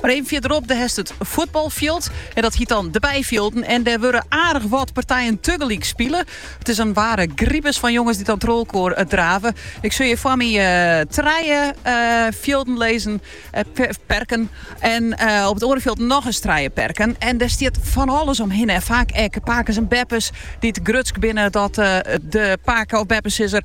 Mar even fierderop dêr hast it fuotbalfjild en dat hiet dan de byfjilden. En dêr wurde aardich wat partijen tegelyk spile. It is in ware gribes fan jonges dy't dan trochelkoar eh, drave. Ik sjoch hjir foar my eh, trije eh, fjilden lizzen, eh, per- perken. En eh, op it oare fjild noch ris trije perken. En dêr stiet fan alles omhinne. En faak ek pakes en beppes dy't grutsk binnen dat eh, de pake- of beppesizzer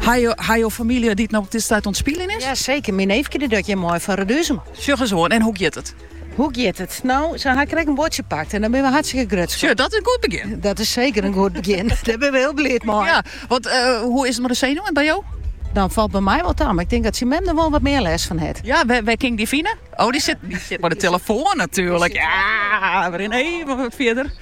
Hawwe jo famylje dy't op dit stuit oan it spyljen is? Ja seker, myn neefke docht hjir mei foar Readuzum. Sjoch ris oan, en hoe giet it? Hoe giet it? No, se ha ek in buordsje pakt en dêr binne we hartstikke grutsk op. Sjoch, dat is in goed begjin. Dat is seker in goed begjin. Dêr binne we hiel bliid mei. Ja, want eh, hoe is it mei de senuwen by jo? Dat falt by my wol ta. Mar ik tink dat syn mem der wol wat mear lêst fan hat. Ja, wy, wy kinne it fine. Oh, dy sit, dy sit by de telefoan natuerlik. Ja, wy rinne even wat fierder.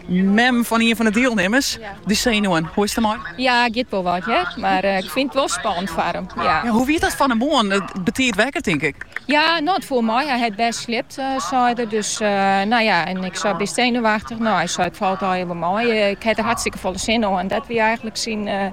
Mem fan ien fan de dielnimmers, de senuwen, hoe is it der mei? Ja, giet wol wat hear, mar ik fyn it wol spannend foar him. Ja. Hoe wie dat fan 'e moarn? Betiid wekker tink ik. Ja, no it foel mei. Hy hat bêst sliept, sei er. Dus no ja, en ik sei bist senuwachtich? No, hy sei it falt allegear wol mei. Ik ha der hartstikke folle sin oan. Dat wie eigenlik syn.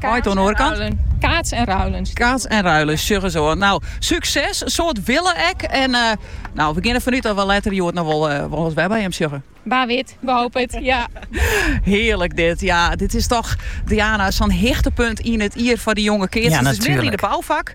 Mei it oan de oare kant. Keats en ruilje. Keats en ruilje, sjoch ris oan. No, súkses, in soad wille ek. En no, we gean der fanút dat we letter hjoed noch wol ris wer by him sjogge. Wa wit, we hope it, ja. Hearlik dit. Ja, dit is toch, Diana, sa'n hichtepunt yn it jier foar dy jonge keatsters. It is midden yn de bouwfak.